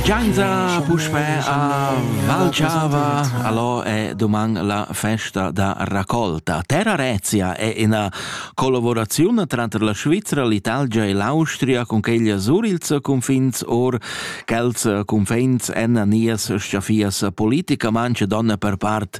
Scienza puspè a Valchava, allora è domani la festa da raccolta. Terra Rezia è una collaborazione tra la Svizzera, l'Italia e l'Austria con quegli surils confins or quels confins en nies schafias politicamente donne per part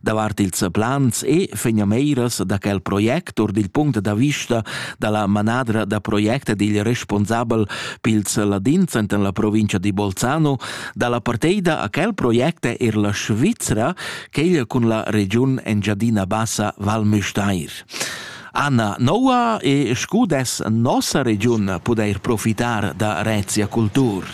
davart ils plans e fegnameires da quel project or dil punct da vista dalla manadra da project ed il responsabel pils ladins enten la provincia di Bolzano dalla parteida a quel project er la Svizra quegl cun la regiun Engiadina Bassa Val Müstair. Anna Noa e scudes nossa regiun pudeir profitar da Rezia Cultur.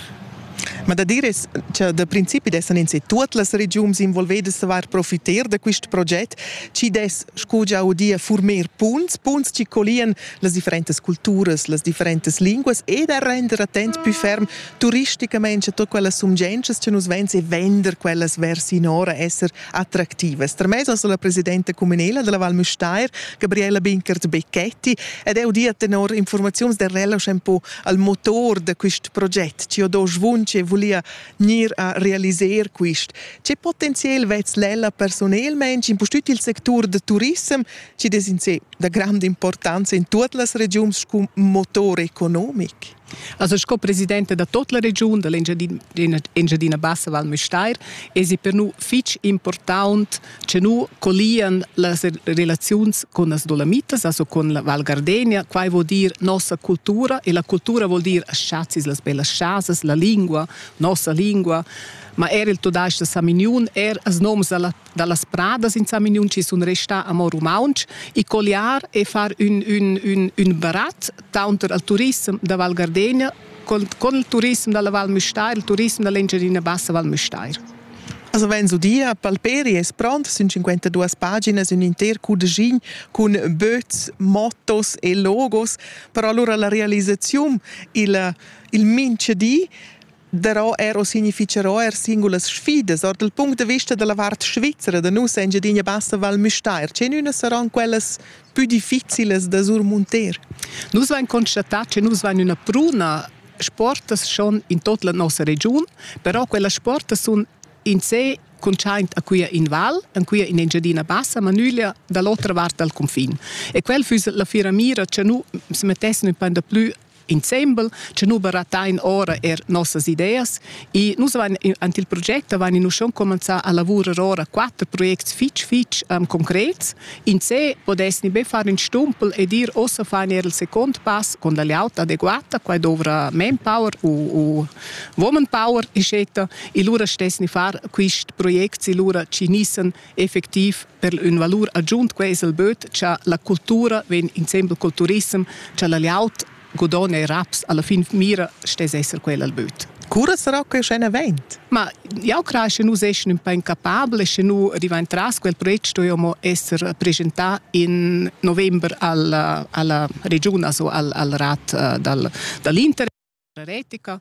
Ma da dir es cha da principi dessan ins e tuot las regiuns involvedas var profiter da quist proget, chi dess, scu già udia, furmer punts, punts chi collian las differentas culturas, las differentas linguas e da render attent pü ferm turisticamaing cha tuot quellas sumgientschas cha nus vegns e vender quellas vers inora esser attractivas. Termez ans ho la presidenta cuminela della Val Müstair, Gabriela Binkert-Becchetti, ed eu dia tenor informaziuns del Relausch ün po al motor da quist proget, chi ho do svunch e vulia gnir a realiser quist. Che potenziel vez l'ella personelmaing in pustüt il sectur da turissem, chi es in sé da grande importanza in tuot las regiuns scu motor economic? Also sco presidente da tot la regiun da l'Engiadina Bassa Val Müstair esi per nu fich important che nu collian las relaziuns con las dolamitas, also con la Val Gardenia. Quai vuol dir nossa cultura e la cultura vuol dir chazis, las bellas chasas, la lingua, nossa lingua, ma er il tudais da Samignun, er als noms da las pradas in Samignun ci sun restà amo rumauntsch e colliar e far un, un, un, un barat taunter al turism da Val Gardenia con, con il turism dalla Val Müstair, il turism dall'Engiadina Bassa Val Müstair. Also vegn udia, Palperi es pront sün 52 paginas ün inter cudegin cun böts, mottos e logos, però allura la realisaziun il, il mincha di darò er o significherò er singulas sfidas. Or dal punct de vista della vart svizzera da nus Engiadina Bassa Val Müstair, c'è una saran quellas più difficiles da surmunter? Nus vain constatat che nus vain una pruna sportas schon in tot la nossa regiun, però quella sportas sun in sé cuntschaint a quia in val, en quia in Engiadina Bassa, ma nüglia dall'otra vart dal confin. E quel füss la fiera mira che nu se mettessi ün pan da plü insembel, che nu baratain ora er nossas ideas e nus van ant il proget van in uschon comanzà a lavurer ora quatter projects fitch fitch um, concrets Insè podesni be far ün stumpel e dir ossa fain eir il second pass con la layout adeguata, quai dovra manpower u, u woman power, eccetera. E lura stesni far quist project si lura chi gnissen effectiv per ün valur agiunt. Quai es il böt cha la cultura vegn insembel col turissem, cha la layout Godon e raps alla fin mira stess esser quella al böt. Cura sarà che scen event? Ma jau credo che nus essin un po incapabili sche nu divent tras quel project stoiamo essere presentà in november alla, alla regione, also al, al rat uh, dal, dall'Inter Retica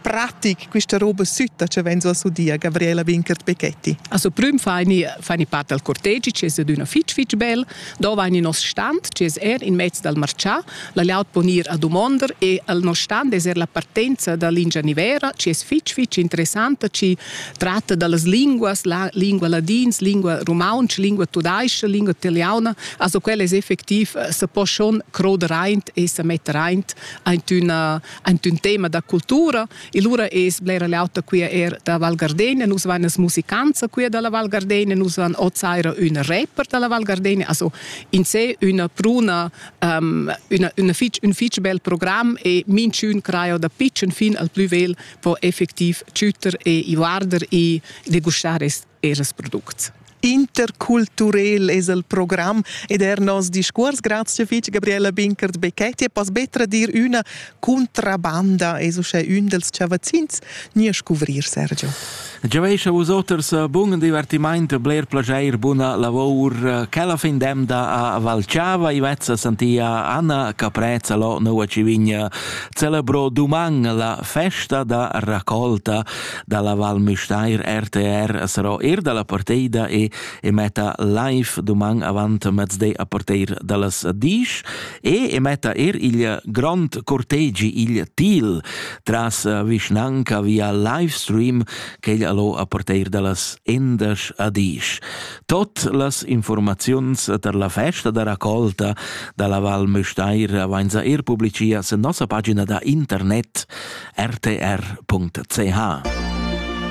pratic questa roba sütta che vegn sulla sudia Gabriela Winkert Becchetti. Also prüm faini faini part dal cortegi che es adüna fich fich bel, do vaini nos stand che es er in mezz dal marchà, la laut po gnir a dumonda e al nos stand es er la partenza da lingia nivera che es fich fich interessanta ci tratta da las linguas, la lingua ladins, lingua rumauntsch, lingua tudaisch, lingua italiana, also quella es effectiv eh, se po schon croder aint e se metter aint aint üna ant ün tema da cultura e lura es blera l'auta quia er da Val Gardegna, nus van as musicanza quia da la Val Gardegna, nus van ot saira üna rapper da la Val Gardegna, also in se üna bruna um, üna, üna fich, ün fich bel program e minchün craio da pitschen fin al plü vel po effectiv tschütter e i guarder e degustar es eras products. Interculturel es el program ed er nos discuors. Grazie fitg Gabriela Binkert Becchetti. Poss betra dir üna contrabanda es uschè ün dels chavazzins. Nie scuvrir Sergio. Giavescha vus oters eh, bun divertimaint, bler plageir, buna lavour. Che la fin demda a Valchava i vezza santia Anna Caprezza lo nova civigna celebro duman la festa da raccolta dalla Val Müstair RTR as ro er dalla parteida e, e metta live doman avant mezde a parteir dallas disch e e metta er il grond cortegi il til tras vischnanca via livestream che il allo a parteir dallas endas a disch. Tot las informaziuns der la festa da raccolta dalla Val Müstair avainza er publicias en nossa pagina da internet rtr.ch.